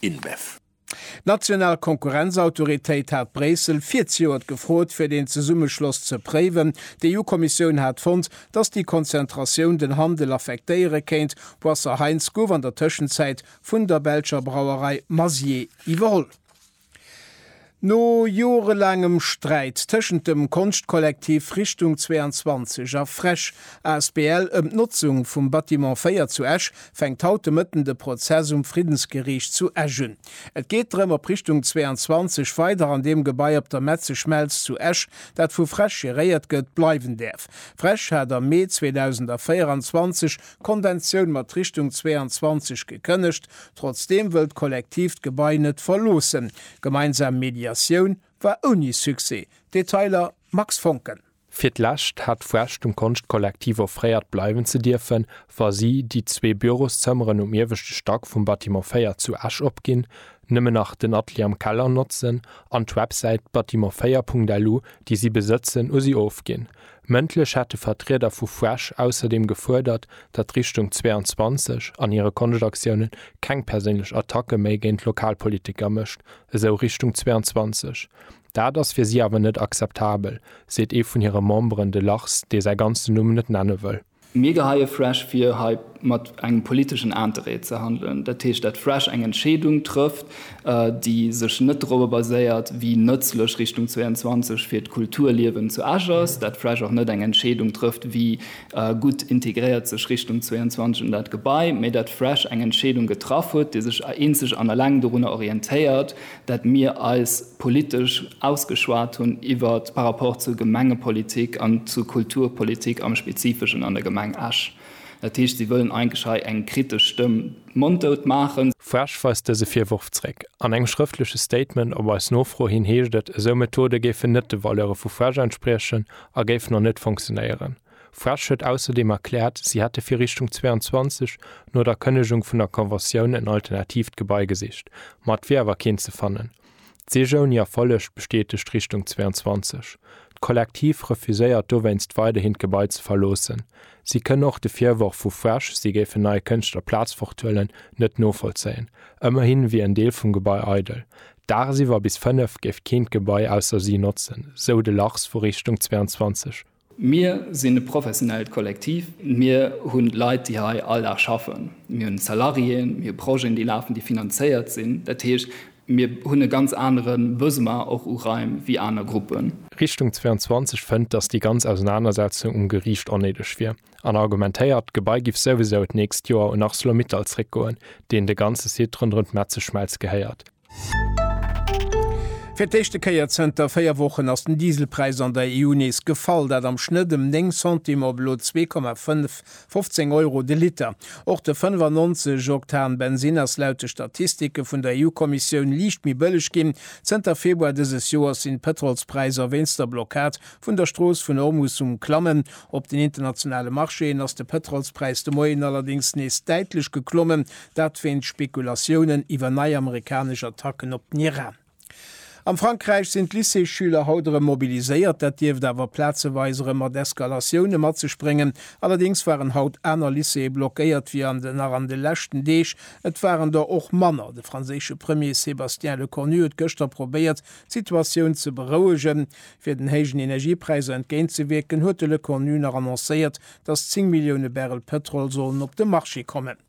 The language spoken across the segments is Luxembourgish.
InBev. D'national Konkurrenzautoritéit hat Bréissel virzejoert gefrot, fir deen Zesummeschloss ze préiwen. D'EU-Kommissioun hat fonnt, datt déi Konzentratioun den Handel affektéiere kéint. Boisser Heinz gouf an der Tëschenzäit vun der belscher Brauerei Mazier iwwerholl. No jorelaangem Sträit tëschent dem Konschtkollektiv Richtung 22 a Fresch asbl ëm d'Notzung vum Bâtiment 4 zu Esch fänkt haut de Mëtten de Prozess um Friddensgeriicht zu Esch un. Et geet drëm, ob Richtung 22 weider an deem Gebai op der Metzeschmelz zu Esch, dat vu Fresch geréiert gëtt, bleiwen däerf. Fresch hat am Mee 2024 Konventioun mat Richtung 22 gekënnegt, trotzdeem wëll d'Kollektiv d'Gebai net verloossen. Gemeinsam Mediatioun war ouni Succès. Detailer, Max Foncken. Fir d'lescht hat d'Fräsch dem Konschtkollektiv offréiert bleiwen ze dierfen, wa si déi zwee Büroszëmmeren um ieweschte Stack vum Bâtiment 4 zu Esch opginn, nëmmen nach den Atelier am Keller notzen an d'Websäit bâtiment4.lu, déi si besëtzen, u si ofginn. Mëndlech hätte Vertrieder vu Fresh ausserdeem gefuerdert, datt Richtung 22 an hire Konschtaktiounen keng perséinlech Attacke méi géint lokal Politiker mécht, esou Richtung 22. Dat ass fir si awer net akzeptabel, seet ee vun hire Memberen, de Lachs, dee säi ganzen Numm net nenne wëll. Mir geheie Fresh vir, hei mat engem politeschen Interêt ze handelen. Dat heescht, dat Fresh eng Entscheedung trëfft, déi sech net dorobber baséiert, wéi nëtzlech Richtung 22 fir d'Kulturliewen zu Esch ass, dat Fresh och net eng Entscheedung trëfft, wéi gutt integréiert sech Richtung 22 an dat Gebai, mä dat Fresh eng Entscheedung getraff huet, déi sech eenzeg an eleng dorunner orientéiert, dat mir eis politesch ausgeschwat hunn iwwer par rapport zur Gemengepolitik an zur Kulturpolitik am Spezifeschen an der Gemeng Esch. Dat heescht, si wëllen eigentlech hei eng kritesch Stëmm monddout maachen. FrEsch weist dëse Virworf zréck. An engem schrëftleche Statement op eis Nofro hin heescht et, esou Methode géifen net de Valeure vu frEsch entspriechen a géifen och net fonctionéieren. Fraiche huet ausserdeem erkläert, si hätte fir Richtung 22 no der Kënnegung vun der Conventioun en alternatiivt Gebai gesicht, ma et wier awer keent ze fannen. D'Sich ouni Erfolleg bestätegt Richtung 22. D'Kollektiv refuséiert dowéinst weiderhin d'Gebai ze verloossen. Si kënnen och de Virworf vu Fraiche, si géifen neie Kënschtler d'Plaz forthuelen, net novollzéien. Ëmmerhin wier en Deel vum Gebai eidel. Dagsiwwer bis fënnef géif keen d'Gebai ausser si notzen, sou de Lachs vu Richtung 22. Mir sinn e professionellt Kollektiv. Mir hu Leit, déi hei all Dag schaffen. Mir hunn Salariéen, mir hu Projeten, déi lafen, déi finanzéiert sinn. Dat heescht, mir hunn e ganz anere Besoin och u Raim wéi aner Gruppen. Richtung 22 fënnt, datt déi ganz Ausenanersetzung um Geriicht onnéideg wier an argumentéiert, d'Gebai giff souwisou d'nächst Joer un Arcelor-Mittal zréckgoen, deenen de ganze Site ronderëm d'Metzeschmelz gehéiert. Fir d'éischte Kéier zënter véier Wochen ass den Dieselpräis an der EU nees gefall, dat am Schnëtt ëm 9 Centimes op elo 2,15 Euro de Liter. Och de 95 Oktan Bensinn ass laut de Statistike vun der EU-Kommissioun liicht méi bëlleg ginn. Zënter Februar dëses Joers sinn d'Pëtrolspräisser wéinst der Blockad vun der Strooss vun Ormus um Klammen. Op den internationale Marchéen ass de Pëtrolspräis de Moien allerdéngs nees däitlech geklommen, Dat wéinst Spekulatiounen iwwer nei amerikanesch Attacken op den Iran. Am Frankräich sinn d'Lycéesschüler haut erëm mobiliséiert. Dat dierft awer plazeweis erëm mat Eskalatioune mat sech bréngen. Allerdéngs waren haut aner Lycéeë blockéiert wéi an den nach an de leschten Deeg. Et waren der och manner. De franséische Premier Sébastien Lecornu huet gëschter probéiert, d'Situatioun ze berouegen. Fir den héijen Energiepräisser entgéint ze wierken, huet de Lecornu nach annoncéiert, datt 10 Millioune Barrel Pëtrol sollen op de Marché kommen.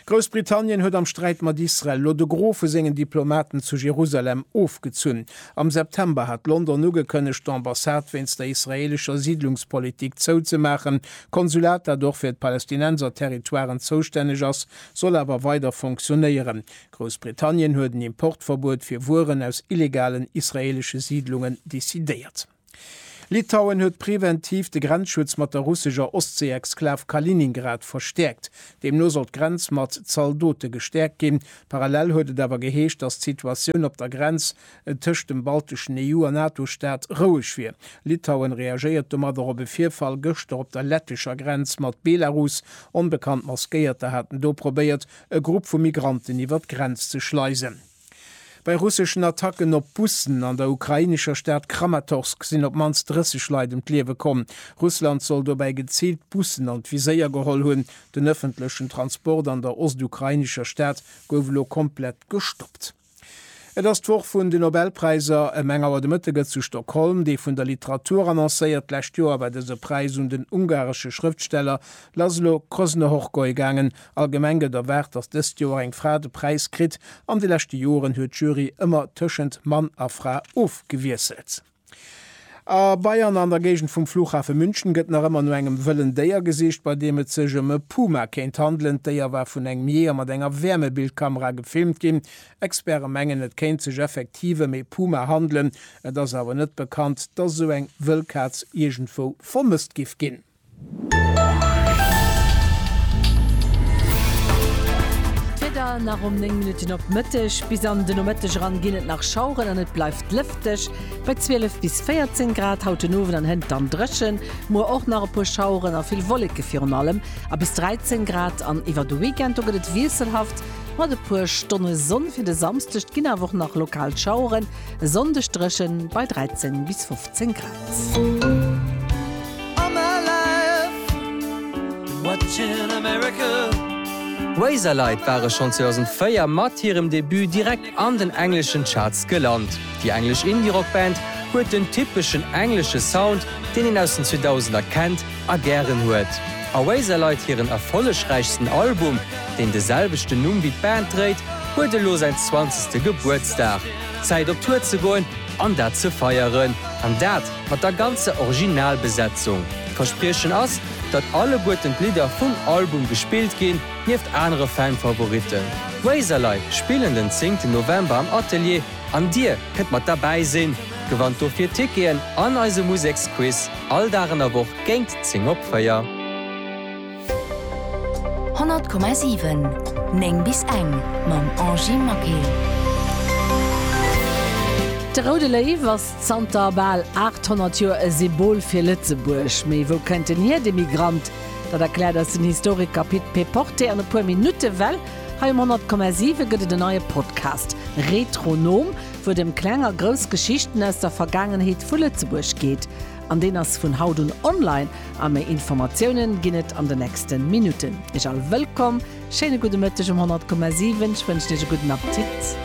Groussbritannien huet am Sträit mat Israel lo de Gros vu sengen Diplomaten zu Jerusalem ofgezunn. Am September hat London ugekënnegt, d'Ambassade wéinst der israeelescher Siidlungspolitik zouzemaachen. D'Konsulat, dat och fir d'Palästinenserterritoiren zoustänneg ass, soll awer weider fonctionéieren. Groussbritannien huet en Importverbuet fir Wueren aus illegalen israeelesche Siidlungen decidéiert. Litauen huet preventiv de Grenzschutz mat der russescher Ostseeexklav Kaliningrad verstäerkt. Deemno soll d'Grenz mat Zaldote gestäerkt ginn. Parallel huet et awer geheescht, datt d'Situatioun op der Grenz tëscht dem balteschen EU a NATO-Staat roueg wier. Litauen reagéiert domadder op e Virfall gëschter op der lettescher Grenz mat Belarus. Onbekannt Maskéierter haten do probéiert, e Grupp vu Migranten iwwer d'Grenz ze schleisen. Bei russeschen Attacken op Bussen an der ukrainescher Stad Kramatorsk sinn op d'mannst 30 Leit ëm d'Liewe komm. Russland soll dobäi geziilt Bussen an d'Viséier geholl hunn. Den ëffentlechen Transport an der ostukrainescher Stad gouf elo komplett gestoppt. Et ass d'Woch vun de Nobelpräiser. Ëm eng Auer de Mëtte gëtt zu Stockholm dee vun der Literatur annoncéiert. D'lescht Joer war dëse Präis un den ungaresche Schrëftsteller Laszlo Kröznöhorgoy gaangen. Allgemeng gëtt erwaart, datt dëst Joer eng Fra de Präis kritt. An de leschte Joren huet d'Jury ëmmer tëschent Mann a Fra ofgewiesselt. A Bayern an der Géigend vum Flughafe München gëtt nach ëmmer no engem wëllen Déier gesicht, bei deem et sech ëm e Puma kéint handelen. D'Déier war vun engem Jeeër mat enger Wäermebildkamera gefilmt ginn. Experte mengen, et kéint sech effektiv ëm ee Puma handelen. Et ass awer net bekannt, datt esou eng wëll Kaz iergendwou vermësst giff ginn. D'Wieder nach ëm 9 Minutten op Mëtteg. Bis an de Nomëtteg eran ginn et nach Schaueren an et bleift lëfteg bei 12 bis 14 Grad. Haut den Owend an Hënt dann dréchen, muer och nach e puer Schaueren a vill Wolleke virun allem a bis 13 Grad. An iwwer de Weekend do gëtt et wiesselhaft mat e puer Stonne Sonn. Fir de Samsdeg ginn awer och nach lokal Schaueren, e Sonndeg dréchen bei 13 bis 15 Grad. Razorlight ware schonn 2004 mat hirem Debut direkt an den engleschen Charts gelant. Déi englesch Indie-Rock-Band huet den typeschen englesche Sound, deen een aus den 2000er kennt a gären huet. A Razorlight hiren erfollegräichsten Album, deen de selwechten Numm wéi d'Band dréit, huet elo säin zwanzegste Gebuertsdag. Zäit op Tour ze goen! An dat ze feieren, an dat mat der ganzer Originalbesetzung. D'Verspriechen ass, datt alleguerten d'Lidder vum Album gespillt ginn, nieft anere Fan-Favoritten. D'Razorlei spillen den zéngten November am Atelier an dir kënnt mat derbäi sinn. Gewannt dofir Ticketen an eise Museksquiz all Dag an der Woch géint zéng op véier. 100,7 9 bis eng mam Angy Maquet. De Roude Léiw ass zanter bal 800 Joer e Symbol fir Lëtzebuerg. Mee wou kënnt en hier, de Migrant? Dat erkläert eis den Historiker Pit Péporté an e puer Minutte, well hei um 100,7 gëtt et en neie Podcast, Retronom, wou et ëm kleng a grouss Geschichten aus der Vergaangenheet vu Lëtzebuerg geet. An deen ass vun haut un online a méi Informatiounen ginn et an de nächsten Minuten. Iech all wëllkomm, schéine gudde Mëtteg um 100,7. Ech wënschen iech e gudden Appetit.